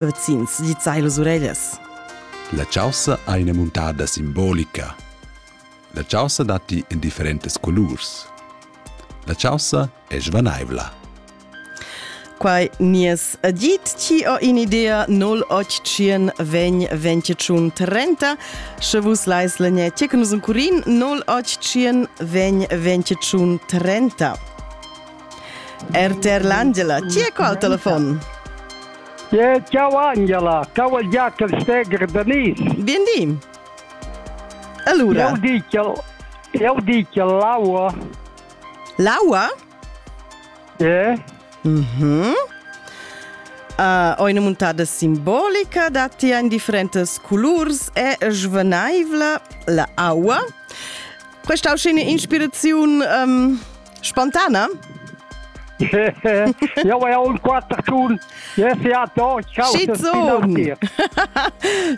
Vecins, gizzai las ureglias. La chaussa ha ina muntada simbolica. La chaussa datti en differentas colurs. La chaussa è svanaivla. Quai nies dit, ci ho in idea 081 vegn 21 30. Sche vus lais lenye tecnus un curin 081 vegn 21 30. RTR l'Angela, chi è qua al telefon? Yeah, ciao Angela, ciao al Jacob Steger Danis. Bienveni. Allora. Eu dico, eu dico l'aua. L'aua? Eh? Mhm. Uh, ho una montata simbolica da ti in differentes colors e svenaivla la aua. Questa è una ispirazione um, Spontana? Jau hai aunc quatter tun. Yes, ja, doch, ich schau,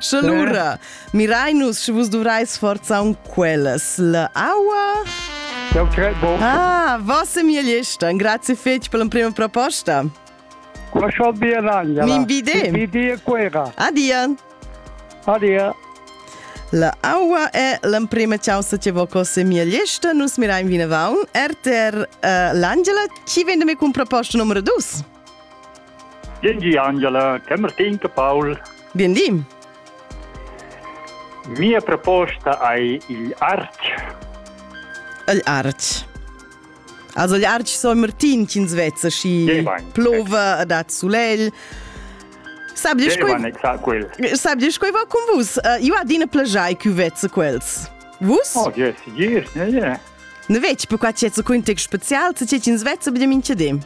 Sche lura, mirai nus, sche vus duvrais forza un quellas. La aua... Eu cred, bo. Ah, vossa migliesta. Grazie fetch per l'emprima proposta. Qua sol via Ragna. M'invide. Vidi a Cuera. Adia. Adia. La aua è l'emprima chaussa che vo cose mia lista. Nus mirai vinavon. RTR uh, eh, l'Angela, chi vende mi con proposta numero 2? Gengi Angela, Camertin Paul. Biendim. Mia proposta è il arch. Il arch. Also gli arci San Martin ch'ins vezza schi plova dat sulegl. Sab dir sab dir quei va con vus? Uh, io adina plagiai che vezza quels. Vus? Oh, yes, yes, yeah, yeah. Ne veci per qua c'è un context special, se c'è ins vezza abbiamo in cedim.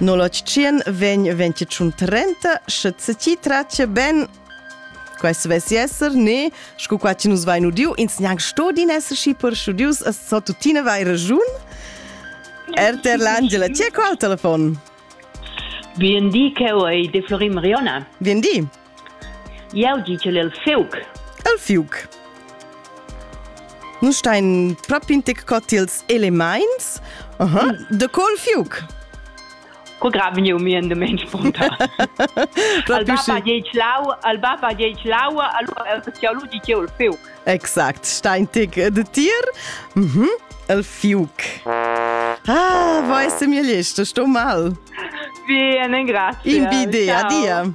No l'otschien vegn 2030, sche se ti traccia ben Quest vess esser ne, sco qua ci nus vain udiu, ins gnanc sto din esser schi per studius, as so tuttina vai ragiun. RTR l'Angela, ti è qua al telefon? Bien di, Cheu ei de Florin Mariona. Bien di. Jau di ch'el è il fiuc. Il fiuc. Nus stein propi in tic cot ils elements. Uh -huh. De co il fiuc? Co graven eu mi en de men spontan. al baba geic lau, al baba geic laua, allora eu lu di ch'eu il fiuc. Exakt, stein tic de tir. Mhm. Mm el fiuc. Ah, vai se mi lista, estou mal. Bien, grazie. In bidea, dia.